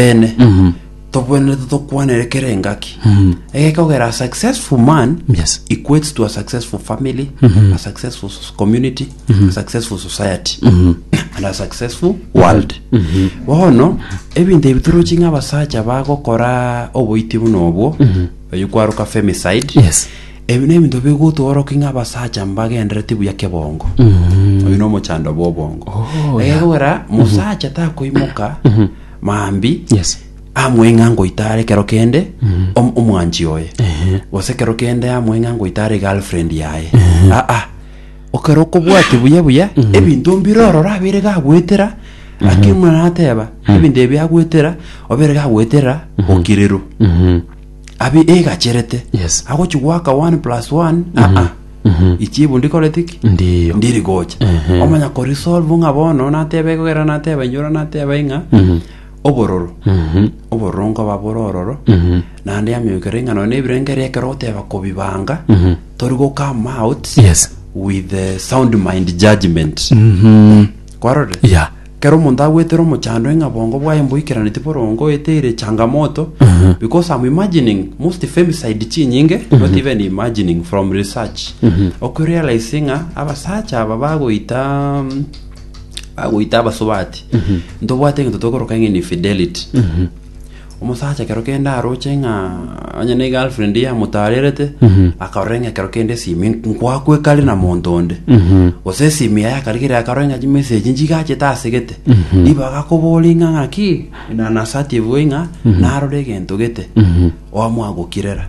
Eene. Mhm. Tobwenerete tokwanere kera engaki. Mhm. Egeka ogera a successful man Yes. equates to a successful family, a successful s- community, a successful society, and a successful world. Bono ebinto ebi torochi ng'a abasacha bagokora oboiti buna obwo, oyo kwaroka femicide. Yes. Ebi nebinto bigotworoki ng'a abasacha mbagendereti buya kebongo. Oyo nomochando bw'obongo. Oh, Egekogera mosacha takoimoka maambia yes amweng'a ngoitara ekero kende om- omwanchi oye Ehe. gose ekero kende amweng'a ngoitara egirlfriend yaye aa okero okobwati buya buya ebinto mbire ororo abere gagwetera akimuna nateba ebinto ebi agwetera obere gagwetera okirero Mhm. abi egacherete Yes. agochi gwaka 1 plus 1 aa ichibu ndikoreti ki Ndiyo. ndiri gocha Ehe. omanya korisolve ng'a bono nateba egogera nateba inyora nateba ing'a Mhm. obororo Mhm. obororo nkoba bore ororo Mhm. naende yamiokera ing'ano na ebirengererio ekero ogoteba kobibanga Mhm. tori go come out Yes. with the sound mind judgment Mhm. kwarorire Yeah. Kera omonto agwetera omochando ng'a bongo bwaye mboikeraneti borongo it ere changamoto because I'm imagining most femicide chinyinge not even imagining from research okurealize ng'a abasacha aba bagoita mm, bagoita abasubati ntobwate ng'into tokoroka ng'a infidelity Omosacha ekero kende aroche ng'a onye ne girlfriend ye amotarerete akarora ng'a ekero kende esimi nkwakwekare na monto onde gose esimi yaye akarigera akarora ng'a chimessage nchigachete asegete nibo agakobori ng'a ng'aki na nasati ebuwe ng'a narore egento gete oamwagokirera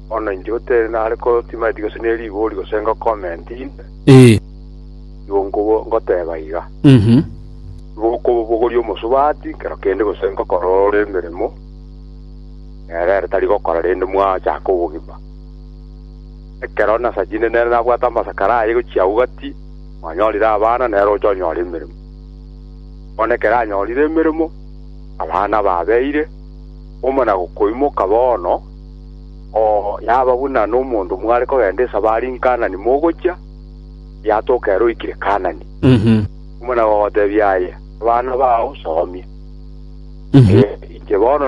Bono inche otere nare ko timaeti gose ne rigori gose ngokomenti inde, Ee. igo nkobo- ngoteba iga, Mhm. igo okobobogoria omosubati kero kende gose ngokora ore emeremo nere ere tari gokora rende mwachaka obogima. Ekero nasa chinde nere nabwate amasakara aye gochia agwo gati, mwanyorire abana nere ocha onyora emeremo. Bono ekero anyorire emeremo, abana babeire, omona gokoimoka bono, Oo naba buna nomonto mware kogenda esabari Kaanani mogochia, yatoka ere oikire Kaanani. Omwana ogoteebia aye, Abana bao somia, inche bono